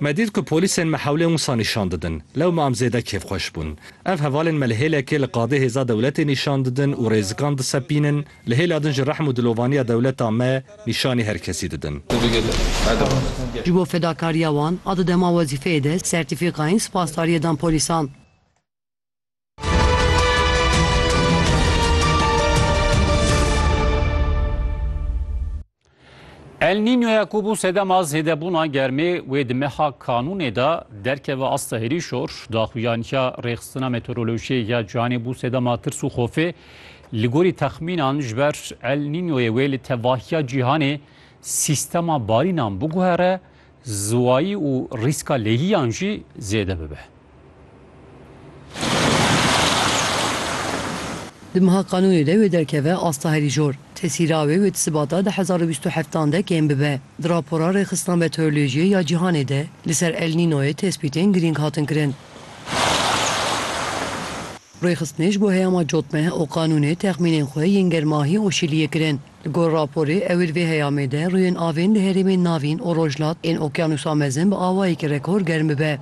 Me dît ku polîsên me hewlên wisa nîşan didin. Lewma em zêde kêfxweş bûn. Ev hevalên me li hêlekê li qadê hêza dewletê nîşan didin û rêzikan disepînin, li hêla din jî rehm û dilovaniya dewleta me nîşanî her kesî didin. Ji bo fedakariya wan a di dema wezîfeyê de sertîfîkayên spasdariyê dan polîsan. El Nînyoya ku bû sedema zêdebûna germê wê di meha kanûnê de derkeve asta herî şor daxuyaniya rêxistina meteorolojiyê ya cihanê bû sedema tirs û xofê li gorî texmînan ji ber El Nînyoyê wê li tevahiya cîhanê sîstema barînan biguhere Ziwayî û rîska lêhiyan jî zêde bibe. Di meha qanûnê de wê derkeve asta herî jor. Tesîra wê wê di sibata du hezar û bîst û heft an de kêm bibe. Di rapora Rêxistina Meteorolojiyê ya Cîhanê de li ser El Nînoyê tespîtên girîng hatin kirin. Rêxistinê ji bo heyama cotmeh û qanûnê texmînên xwe yên germahî û şiliyê kirin. Li gor raporê, ewil vê heyamê de rûyên avên di herêmên navîn û rojhilat ên Okyanusa Mezin bi awayekî rekor germ bibe.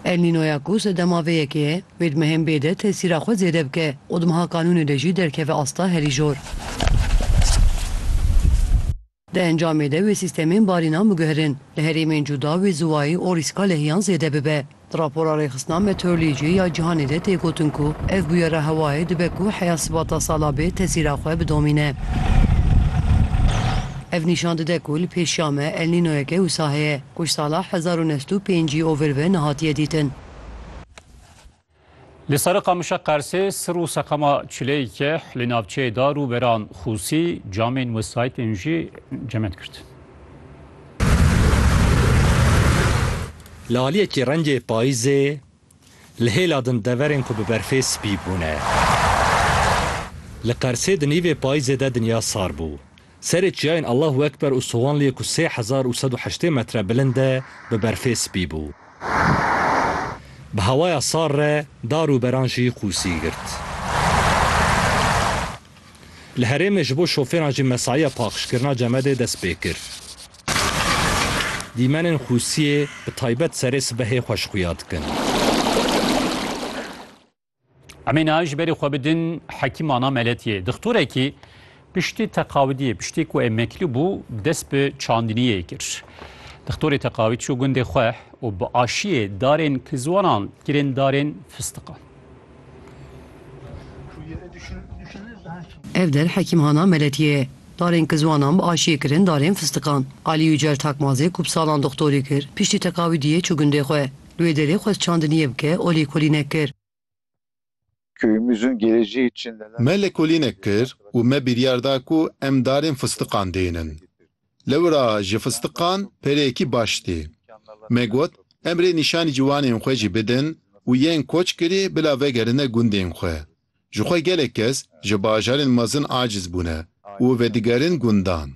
El Nînoya ku sedema vê yekê ye, wê di mehên bê de tesîra xwe zêde bike û di meha kanûnê de jî derkeve asta herî jor. Di encamê de wê sîstemên barînan biguherin, li herêmên cuda wê ziwayê û rîska lehiyan zêde bibe. Di rapora Rêxistina Meteorolojiyê ya Cîhanê de tê gotin ku ev bûyera hewayê dibe ku heya sibata sala bê tesîra xwe bidomîne. Ev nîşan dide ku li pêşiya me El Nînoyeke wisa heye, ku ji sala hezar û neh sed û pêncî ovir ve nehatiye dîtin. Li Sere Qamişa Qersê sir û seqama çileyeke li navçeyê dar û beran xûsî, camên wesayîtên jî cement girt. Li aliyekî rengê payîzê li hêla din deverên ku bi berfê spî bûne. Li Qersê di nîvê payîzê de dinya sar bû. Serê çiyayên Allahu Ekber û Sowanliyê ku sê hezar û sed û heştê metre bilind e bi berfê spî bû. Bi hewaya sar re dar û beran jî qûsî girt. Li herêmê ji bo şofêran jî mesaiya paxişkirina cemedê dest pê kir. Dîmenên qûsiyê bi taybet serê sibehê xweş xuya dikin. Em ê niha ji berê xwe bidin Hekîm Ana Meletiyê. Dixtorekî piştî teqawidiyê, piştî ku emekli bû dest bi çandiniyê kir. Dixtorê teqawîd çû gundê xwe û bi aşiyê darên kizwanan kirên darên fistiqan. Ev der Hekîm Hana Meletiyê ye. Darên kizwanan bi aşiyê kirin darên fistiqan. Alî Yucel Takmazê ku bi salan dixtorî kir, piştî teqawidiyê çû gundê xwe. Li wê derê xwest çand niyê bike û lêkolînek kir. Me lêkolînek kir û me biryar da ku em darên fistiqan dênin. Lewra ji fistiqan pereyekî baş tê. Me got em rê nîşanî ciwanên xwe jî bidin û yên koç kirî bila vegerine gundên xwe. Ji xwe gelek kes ji bajarên mezin aciz bûne û vedigerin gundan.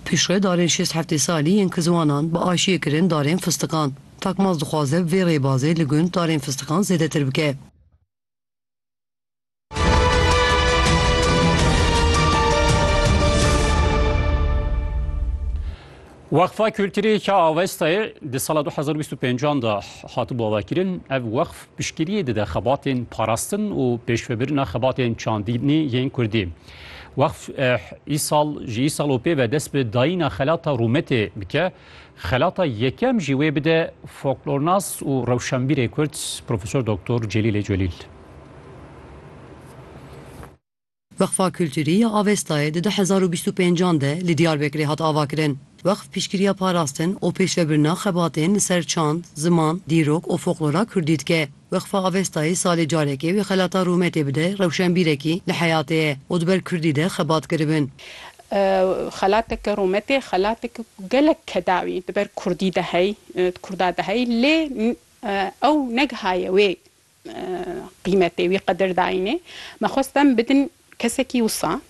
Piştre darên şêst heftê salî yên Kizwanan bi aşiyê kirin darên fistiqan. Takmaz dixwaze bi vê rêbazê li gund darên fistiqan zêdetir bike. Weqfa Kulturê Ka Avestayê di sala du hezar û bîst û pênc de hatibû avakirin. Ev weqf piştgiriyê dide xebatên parastin û pêşvebirina xebatên çandînê yên kurdî. Weqf îsal ji îsal û pê ve dest bi dayîna xelata rûmetê dike. Xelata yekem jî wê bide foklornas û rewşenbîrê kurd Profesor Doktor Celîlê Celîl. Weqfa Kulturî ya Avestayê di du hezar û bîst û pênc an de li Diyarbekirê hat avakirin. Weqf piştgiriya parastin û pêşvebirina xebatên li ser çand, ziman, dîrok û foklora kurdî dike. Weqfa Avestayê salê carekê wê xelata rûmetê bide rewşenbîrekî li heyatê ye û di ber kurdî de xebat kiribin. Xelateke rûmetê xelateke ku gelek kedawî di ber kurdî de hey di kurda de hey lê ew negihaye wê qîmetê wî qedir dayînê. Me xwest em bidin kesekî wisa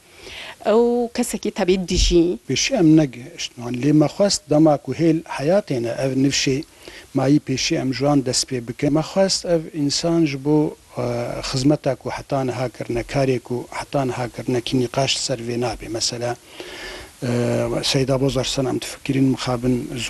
û kesekî tevî dijî. Pêşî em ne gihiştman lê me xwest dema ku hêl heyatê ne ev nifşê mayî pêşî em ji wan dest pê bikin. Me xwest ev însan ji bo xizmeta ku heta niha kirine, karê ku heta niha kirine kî nîqaş li ser vê nabê. Mesela Seyda Bozarsan em difikirîn mixabin